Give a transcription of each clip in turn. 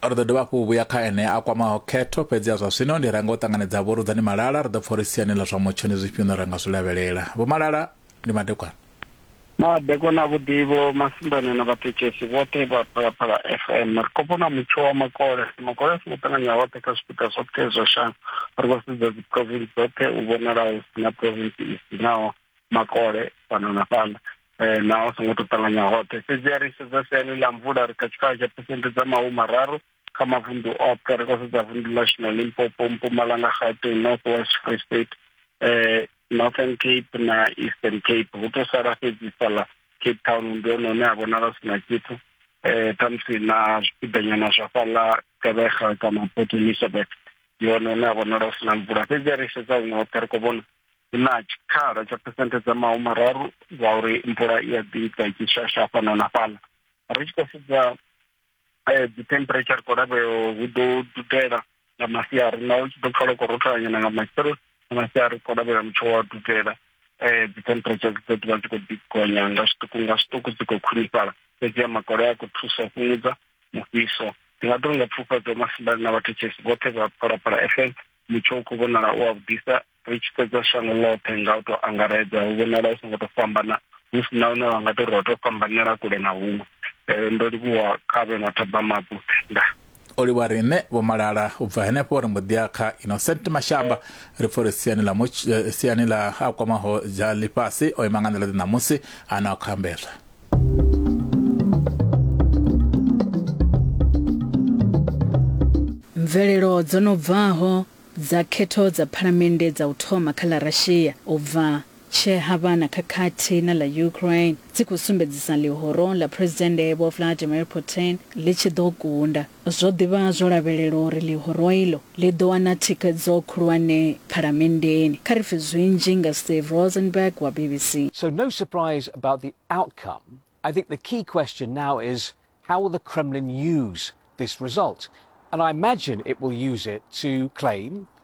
ri ḓo dovha hafhu u vhuya kha ene a kwamaho khetho fhedzi a zwa zwino ndi renga u ṱanganedza vho rudzani malala ri ḓo pfa uri siani ḽa zwa mutsho ndi zwifhio no renga zwi lavhelela vho malala ndi madekwana madekwana a vhuḓivho masimbani na vhathetshelesi vhoṱhe vha phalaphala fm ri khou vhona mutsho wa makole makole a songo ṱanganya hoṱhe kha zwipiḓa zwoṱhe zwa shango ri khou sedza dziprovinsi dzoṱhe u vhonalaho si na provinsi i sinaho makole fhano na fhaḽa um na o songo to ṱanganya hoṱhe fhedzi a ri sedza siani ḽa mvula ri kha tshikhala tsha phesente dza mahumararu kha mavunḓu oṱhe ri khou sedza vunḓu ḽashu na limpopo mpumalanga gauteng north west free state um northern cape na eastern cape hu to sala fhedzi fhaḽa cape town ndi hone hune ha vhonala si na tshithu um khamusi na zwipiḓanyana zwa fhaḽa kevega kana port elizabeth ndi hone hune ha vhonala hu si na mvula fhedzi a ri sedza huṅwe hoṱhe ri khou vhona hu na tshikhala tsha phesenthe dza mahumararu dza uri mvula i a ḓi ita tshi shasha fhano na fhaḽa ri tshi khou sedza eh, dzi temperature khou lavheo hu ḓo dudela nga masiari naho tshi ḓo pfala khou rotholanyana nga matsheloni nga masiari khou lavhela mutsho wa dudela um dzi temperature dzi ḓo ḓivha dzi khou ḓi gonya nga zwiṱuku nga zwiṱuku dzi khou khwinifhala fhedzi a makole a khou thusa fhungudza mufhiso ndi nga ḓo nga pfufhadzo masimbani na vhathetshelesi vhoṱhe vha phalaphala fm mutsho u khou vhonala u wa vhudisa ri tshi sedza shango ḽoṱhe nga u to angaredza hu vhonala hu songo to fhambana hu si na hune wa nga to ri ho to fhambanela kule na huṅwe um ndo livhuwa kha vhe na ṱhoḓa mabu nda o livhuwa riṋe vho malala u bva henefho ri mbo ḓiya kha innocent mashamba ri pfha uri siani ḽa eh, siani ḽa a kwamaho dza ḽifhasi o ima nga nḓila ḓe ṋamusi a na o khambedzwa mvelelo dzo no bvaho dza khetho dza phalamennde dza u thoma kha ḽa russia u bva tshe ha vha na khakhathi na ḽa ukraine dzi khou sumbedzisa ḽihoro ḽa phuresidennde vho vladimir putin ḽi tshi ḓo kunda Zwo ḓi vha zwo lavhelelwa uri ḽihoro iḽo ḽi ḓo wana thikhedzo khulwane Phalamenndeni. Kha ri pfe zwinzhi nga Steve Rosenberg wa BBC. So no surprise about the outcome. I think the key question now is how will the Kremlin use this result? And I imagine it will use it to claim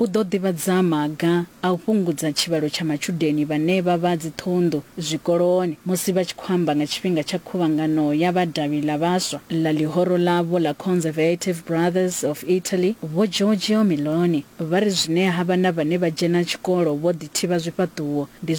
U ḓo ḓivhadza maga a u fhungudza tshivhalo tsha matshudeni vhane vha vha dziṱhunḓu zwikoloni musi vha tshi khou amba nga tshifhinga tsha khuvhangano ya vha davhi ḽa vhaswa ḽa ḽihoro ḽavho ḽa Conservative Brothers of Italy, Vho Giorgio Meloni, vha ri zwine ha vha na vhane vha dzhena tshikolo vho ḓithivha zwifhaṱuwo ndi